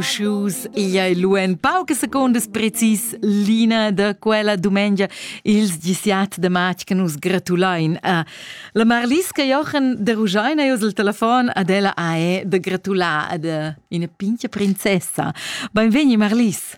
shoes. Igl ei lu en paucas secundas precis l'ina da quella dumengia ils 17 de matg che nus gratulein a la Marliska Jochen de Rugein ei il telefon ad ella ae de gratular ad ina pincha princessa. Benvegni Marlis.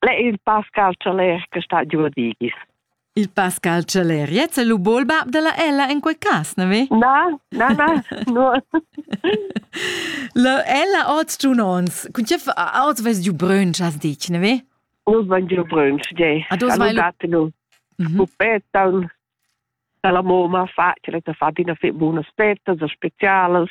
Le il Pascal Challer che sta giù digis. Il Pascal Challer, jetzt è lu bolba della Ella in quei cas, ne vi? Na, na, na, no. La Ella oz giù ons. Kun chef oz ves giù brün, chas dich, ne vi? Nu van giù brün, je. A dos vai lu. Pupetta, la mamma fa, ce l'ha fatto una febbre, una spetta, speciales.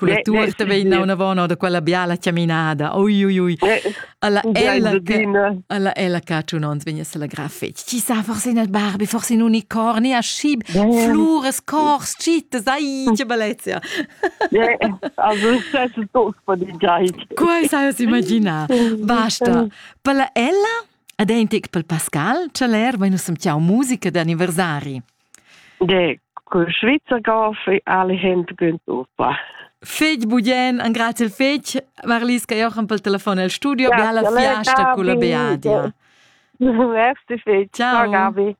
Quella tuorta vegn naunavon or da quella biala chaminada. Ui, ui, ui. Alla ella che alla ella che tun ons vegn a la grafet. Ci sa forse in Barbie, forse in unicorni, a schib, flures, cors, citas, ai, che bellezia. Also, c'è tutto per di gait. Quai sai os imagina. Basta. Per la ella, adentic per Pascal, c'è l'air, venus siamo musica d'anniversari. De col Schweizergau fei alle Hände güntuffa. Fetg bugien, an grazie il fetg, Marlis che Jochen pel telefon al studio, be alla fiasta culla Beadia. Merci fetg. Ciao. Ciao Gabi.